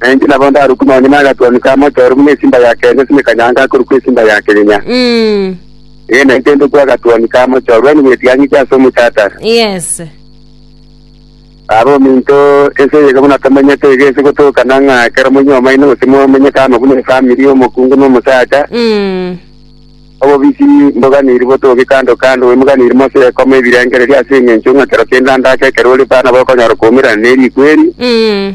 Na inche nabo ndarukwe nonya nagatwani ka mochoro buna esimba ya kenya ase mekanyanga akorukwa esimba ya kenya. Mm. Ee, na inche ndokwa agatwani ka mochoro ande bwetigang'iti ase omochatara. Yes. Aba ominto ense eyige buna tomenyete iga ase gotokana ng'a ekero moinwe omaino gose momenye kama buna efamiri omokungu na omosacha, Mm. obobisi mboganiri botoge kando kando, bwemoganiri mose ekoma ebirengererio ase eng'encho ng'a kero kende andake ekero ore bana bokonyora koumerana neriko eri, Mm.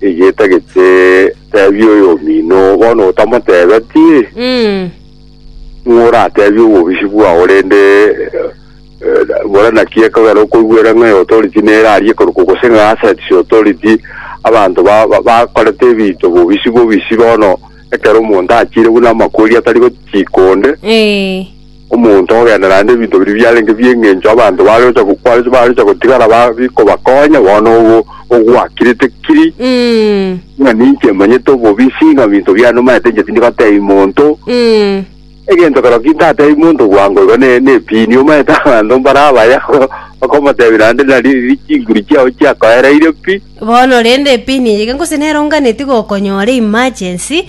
Egeta geche tebia oyomino bono otamotebeti Mm. ng'o oratebie obobisi bwao rende eh, bora naki ekogera okoigwera ng'a authority nere aria koruko gose ng'a assets authority abanto ba- ba- bakorete ebinto bobisi bobisi bono ekero omonto achire buna amakori atari gochika onde Eh. omonto ogogenda naende ebinto biria biarenge bi'engencho abanto bare gocha go- bare bare gocha gotigara ba- bikobakonya bono ogo ogwakirete kiri Mm. ng'a ninche manyete obobisi ng'a binto biane omanyete inche tindi gotebi monto Mm. egento kero kintatebi monto bwango igo ne nepini omanyete abanto mbare abaya okomotebi naende nari ri chinguru chiao chiakoereire pi Bono rende epini eyige gose nero onganeti gokonyora emergency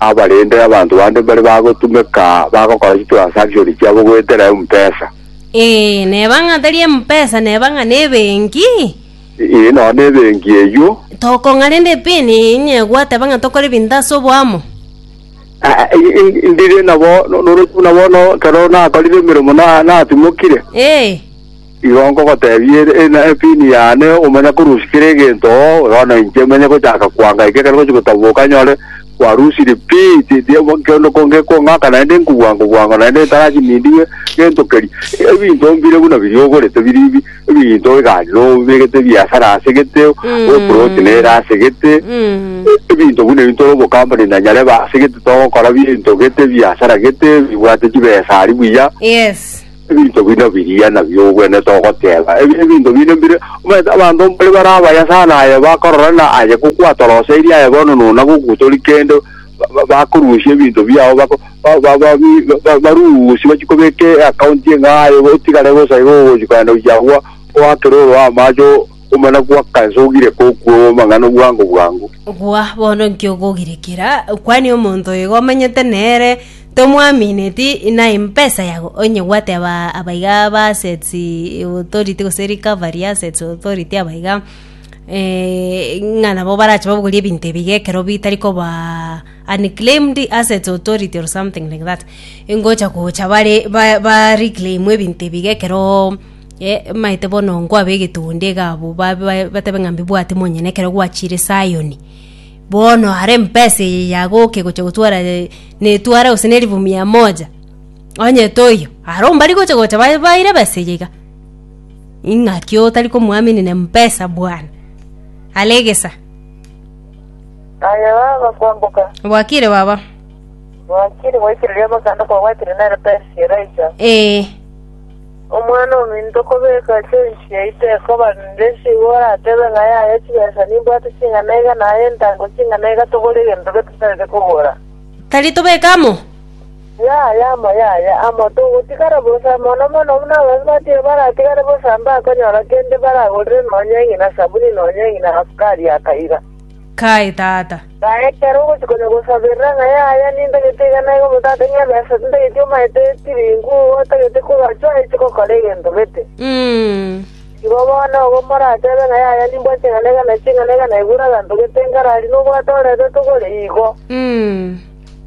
abarende abanto bande mbare bagotumeka bagokora chitransaction chiabo goetera empesa. Ee, neba ng'a tari empesa, neba ng'a nebenki. Ee, nonya nebenki eyio. Tokong'a rende epin inye gwateba ng'a tokore ebinto ase oboamo. Ah, ah, i- i- Ndire nabo, no- noroche buna bono ekero nakorire emeremo na- natimokire. Ee. Igo nkogoteebia ere, Ina epini yane, omanye korusia kera egento, bono inche menye gochaka kwanga eke ekero ngochia gotaboboka nyore kwarusirie pi, tindi kende ko ngekong'aka naende nkobwango bwango naende ntarachie nindigwe gento keria. Ebinto mbire buna biria ogorete biri bi, ebinto egari nobegete ebiasara ase gete, eploti nere ase gete, ebinto buna ebi ntore obocompany na nyarebe ase gete togokora binto gete, ebiasara gete, bibwate chibesa aria buya. Yes. Ebinto bino biria nabio ogwenerete ogoteeba, Ebi nebinto binde mbire. Omanyete abanto mbari bare abaya sana aye bakorora na aye gokwatoroseirie aye bono nona gogutori kende bakorusia ebinto biao bako ba barusie bachie kobeka e account eng'ao aye otigare bosa iga ogochia kogenda gochia agwo oakere oroe amache omana goaka ense ogire kokwa amang'ana obwango bwango. Gwa bono inki ogogirekera? Kwania omonto oyo iga omanyete nere. Tomwamineti inai mpesa yago onye gwateba abaiga ba assets authority gose recovery assets authority abaiga eh, ng'a nabo barache babogorie ebinto ebiga ekero bitari koba unclaimed assets authority or something like that ngocha gocha bare ba ba reclaim ebinto ebiga ekero eh, maete bono nkwabe egetunde iga abwo ba- ba- batebe ng'a mbibwati monyene ekero gwachire Zion. Bono are mpesa eye yagoke gocha gotwara netware gose nerifu mia moja, onye toiyo, aro mbari gocha gocha ba- baire ebesa eye iga. Ing'aki otari komoaminine mpesa bwana, are egesa. Aye baba kwamboka. Bwakire baba. Bwakire gwaikire riabakande kwabwatire nere pesa eraicha. Ee. Omwana-o-minto kobekwa ase enchili yaito ekoba nde, sigwa oratebe ng'a yaya chibesa, nimbwate ching'ana iga, na aye entango ching'ana iga, togore egento gete tarete kogora. Tari tobeke amo? Yaya amo, yaya amo, togotigara bosa, mono mono buna abanto batiga baratigare bosa mbakonyora kende baragorere nonya eng'ina sabuni, nonya eng'ina asukari akaiga. Kae, Tata. Kae, ekero ogochia konya gosaberera ng'a yaya, nintagete iga na iga, omotata ng'a abe ase, tintageti omaete chiringu, otagete kogacha oeche gokora egento gete. Igo bono obo moratebe ng'a yaya nimbua ching'ana iga na ching'ana iga na igure aganto gete nkarari nobwate orebe togore igo.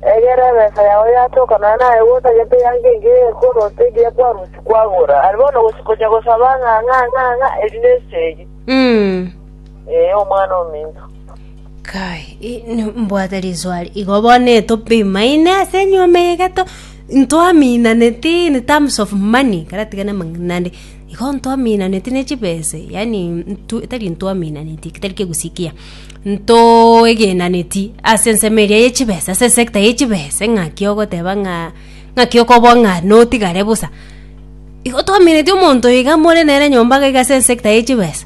Egera ebesa yao yatoka nonya naye gotagete eanga engiya ekoro ase egiya kwarusia kwagora. Aria bono ogochia konya gosaba ng'a, ng'a, ng'a, ng'a, eri nesegi. Ee, Omwana ominto. Kai, i- n- mbwate riswari igo bono etopimaine ase enyuoma eye geto ntwaminaneti in terms of money karatigane amang'inande igo ntwaminaneti ne chibese yani ntu- tari ntwaminaneti tari kegusikia ntoegenaneti ase ensemo eria ya chibesa ase esecta ya chibesa ng'aki ogoteba ng'a ng'aki okoba ng'a notigare bosa igo twaminetie omonto iga more nere nyomba iga ase esecta ya chibesa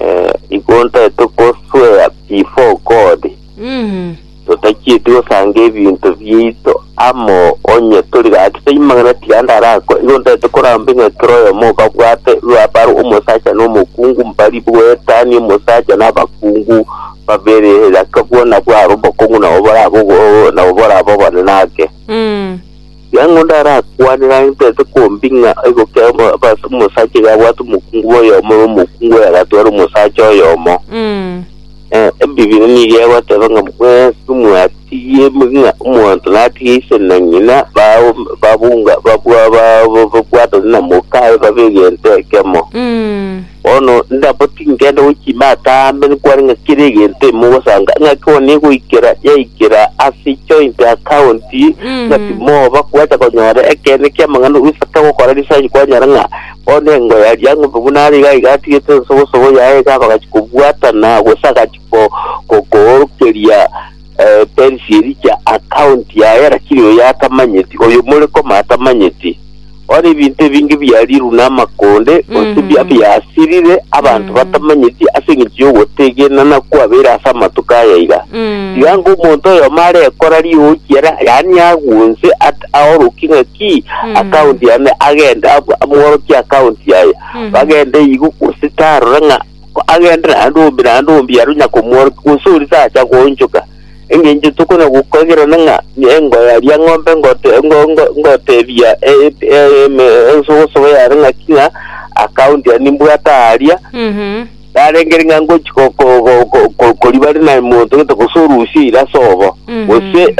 Eh, igonta etokoswea before God Mm. totachieti gosanga ebinto biaito amo onye tori gaki taimang'ana tiga ndarako igonta etokoramba ng'a ekero oyomo okabwate rwabaro omosacha na omokungu mbari bwetani omosacha na abakungu babere raka bwona bwaro obokong'u nabo borabogo nabo boraba obonene ake Mm. Ng'a ng'onda arakwanere agenterete kwombi ng'a aigokere omo- abas- omosacha iga abwate omokungu bw'oyomo na omokungu oyo agatware omosacha oyomo. Mm. Eh, Ebibiri nigo egoteba ng'a mwensi mwatigie ng'a omonto natigie ise na ng'ina bao- babunga babwa- ba- ba- babwatane na mokaye babe egento ekemo. Mm. Bono ndabo tingenda gochima atambe nkwane ng'a kera egento imogosanga ng'aki one goikera yaikera ase joint account ng'a timoba kobasa konyora ekeene ki'amang'ana gose togokora research kwanyora ng'a bono engo ya Liang'ombe buna are iga iga atigete ensogosogo yaye iga bagachia kobwatana gose agachia ko- ko- koorokeria Perisi Elija akauntia aye, lakini oyo atamanyeti, oyo more koma atamanyeti. Bono ebinto ebinge biariirwe namakonde, gose bia- Mhm. biasirire, abanto Mhm. batamanyeti, ase engencho y'ogotegenana kwabeire ase amatuko aya iga. Mm. Tiga ngomonto oyomo are ekora riookia, ra- yaani agunse, at- aorokie ng'aki Mm. akaunti yane, agende ab- amworokie akaunti yaye. Mhm. Bagende igo gose tarora ng'a Agenderere naende ombe naende ombe aro onye akomworokia, gose ore tacha goonchoka, engencho tokona gokoigerana ng'a nkoyaria eng'ombe ngoteebia ensogosogo yare ng'aki ng'a account yane nimbwate aaria, narengere ng'a ngochi koriba are naye monto gete gose orusia eira ase obo. Gose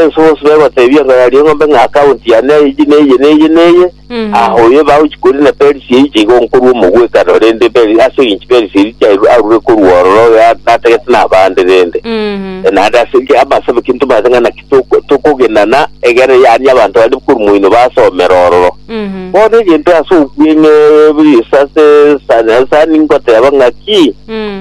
ensogosogo egoteebia nkoyaria eng'ombe ng'a account yane eye neye neye neye, Ahoyo ebagochi korwa na Perisia eiche igo nkorwa omogwekano, rende Peri- ase engencho Perisia eria chiairwe arure korwa ororo oyo a- natagete nabande rende. Na naende ase enki- amasabe ki ntomanyete ng'a naki toko- tokogenana egere yaani abanto baria korwa moino basomera ororo. Bono egento ase okweng'e bw'Yeso ase ensani ensani ngoteba ng'aki,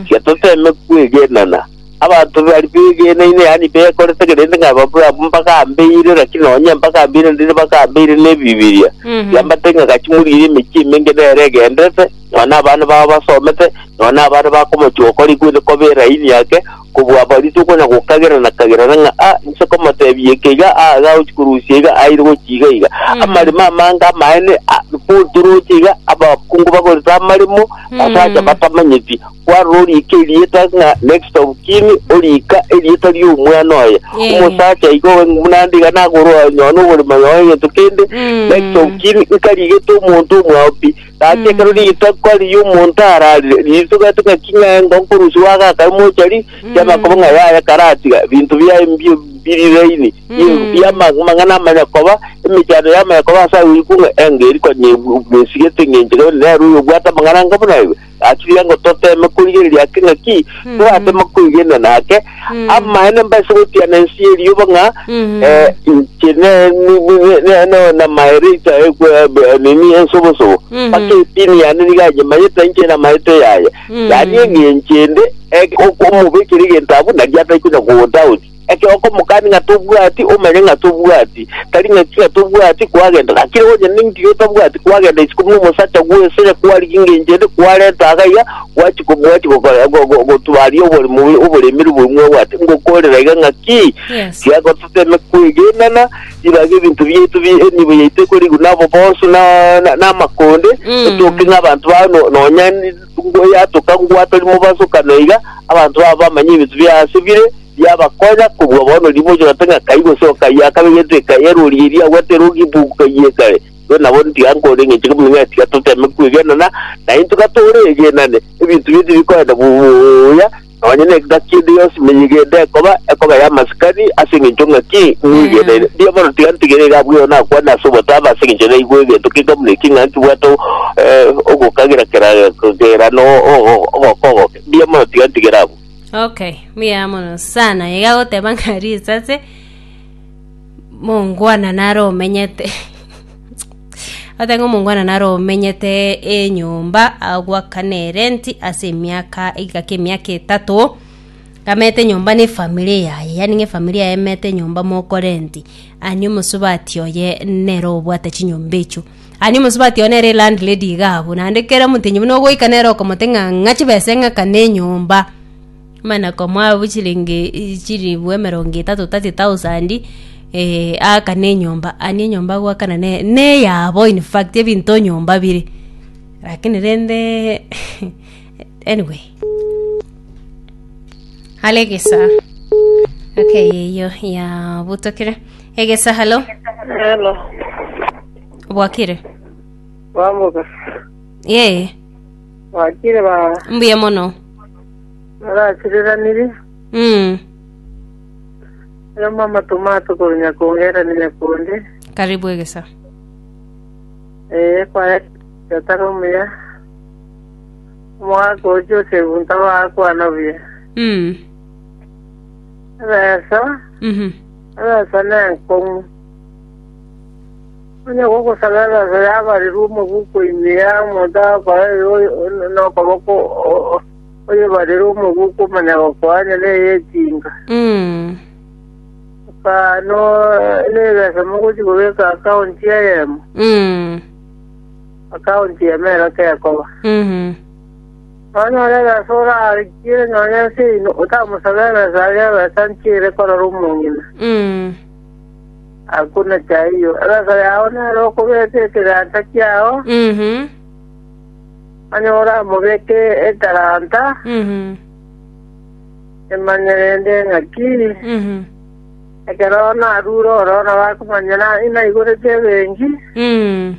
tiga toteme kwegenana. Abanto bari begeneine, yaani bekorete kerende ng'a babe abwo mbagambeire, lakini nonye mbagambeire ndire bagambeire n'Ebibilia. Mhm. Kiamate ng'a gachia moriire emechie emenge nere egenderete, nonya abana babo basomete, nonya abare bakomochia gokora igwete koba eraini yake, kobua aba ritu okonya gokagera na kagerana ng'a a inse komotebia eke iga, a iga agochia korusia iga, aire gochia iga iga. Mhm. Amaremo amange amaene, a, boturoche iga, abakungu bagorete amaremo, ase acha Mhm. batamanyeti. Kwarora oriika erieta ng'a next of kin, oriika erieta ri'omwana oye. Eh. Omosacha igo obe buna ndiga nagoro aye onye one oborimo onye one egento kende. Mm. Next of kin nkarigete omonto omwao pi. Gaki Mm. ekero ritoka ri'omonto ararire, riritogetwe ng'aki ng'a engo nkorusia gwagakare mochari, kiamakoba ng'a yaya karatiga, binto biaye mbio biri laini, binto Mm. bia ma- mang'ana amaya koba, emechando yamaya koba ase agwo iko ng'a engo eri konya ebu- esigete ng'encho nere oyobwate amang'ana anga buna igo. Gachiria ngo toteme korigereria ake ng'aki Mhm. toratema kwegena nake Mhm. amaene mbaise gotiana ensi y'erioba ng'a Mhm. eh, inche ne- ni- ni- ne- ne- namaere inche eh, kwe- eh, be- nini ensobosobo Mhm. mpaka etini yane niga yanyemanyete na inche namaete yaye Mhm. yaani eng'enchende eh, ok- omobekire egentabu nari ataikuna kogotaoti Ekero okomokani ng'a tobwati, omanye ng'a tobwati, tari ng'a inki ng'a tobwati kwagenda. Gaki rero onye ninki iga otabwati kwagenda isiko buna omosacha gwesire kwarigia engencho ende kwarenta iga iga, gwachia ko- gwachia gokora- go- go- gotubaria oborimo bwe- oboremeru obo mwabwate, ngokorera iga ng'a ki? Yes. Tiga gototeme kwegenana, ribaga ebinto biaito bi enibo yaito ekorigwa nabo bonsu na- na- namakonde, Mm. otoke ng'a abanto bao no- nonya Tungwe yatoka ngwa tori mobaso kane iga, abanto babo bamanye ebinto bia ase bire biabakonya kobua bono rimoche goteba ng'a kai gose okai akabe egento ekai erori eria agwete erogi ibugu kai ekare. Igo nabo ntiga nkore eng'encho kemo ng'a tiga toteme kwegenana naintwe ka tore egenane ebinto bire tibikoenda buya Nonya n'egaki ende yonsi menyigende ekoba, ekoba y'amasikani, ase engencho ng'aki ng'wegenere? Mbuya mono, tiga ntigere iga abwo yono akwane ase obotaaba, ase engencho naigwe egento keka buna eki, ng'a ntibwate o- eh, ogokagera kera- kera no o- ogoka ogoke. Mbuya mono, tiga ntigere abwo. Okay, mbuya mono sana. Iga agoteba ng'a risase mongwana naro omenyete. Oteba ng'a omongwana naro omenyete enyomba agwakana erenti ase emiaka egikaka emiaka etato amete enyomba na efamiri yaye yaani ng'a efamiri yaye emete enyomba mokorenti ani omosubati oye nere obwate chinyomba echio ani omosubati oye nere elandlady iga abwo naende kera omotenyi buna ogoika nere okomote ng'a ng'a chibesa eng'akane enyomba. Mana komoabo chilingi chilifu emerongo etato, thirty thousand, eh, aakane enyomba. Ani enyomba agoakana ne- neyabo in fact ebinto nyomba bire. Lakini rende anyway. Halo egesaha. Okay eyio yabutokire. Egesa halo, Hello. obwakire? Bambuka. Yee, Wakire baba. mbuya mono. Narachireranirie, Mm. oyomo amatuma ato korwa Nyakonge era ni Nyakundi. Karibu egesa. Ee, kwaya yatara omuya. Omwaka o Joseph ntabakwana buya. Mm. Ebesa, Mhm. ebesa nenkong'u. Onye gogosagerera ense yabarirwe omobuko ime ya omonto agokorera oyo nokoboko oyebarirwe omobuko omonyagoka onye neyetinga, ekaano nebesa mogochia kobeka akaonti eyemo, akaonti ime ero tekoba. Nonya ore ebesa orarikiire nonya ense yaino, otamosagerera ense aria ebesa nchiire korora omong'ina. Hakuna cha hiyo. Emeso yao nere okobeka ekegancha kiao, Mhm. manya oramobeke etalanta, Mhm. emanye rende eng'aki, Mhm. ekero narure oro nabo akomanya na inaigorete ebenki, Mhm.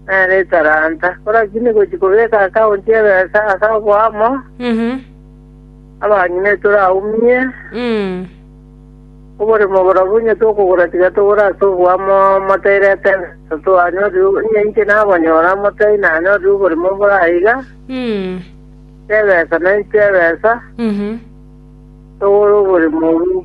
nere etalanta. Korakini gochi kobeka akaunti ebesa ase oboamo, Mhm. abang'ina etore aumie, Mhm. Oborimo borobwo onye tokogora tiga togore ase oboamo motairete ng'ato twanyorire, onye inche nabonyora motai nanyorire oborimo bore aiga, chebesa nainche chebesa, togore oborimo obo.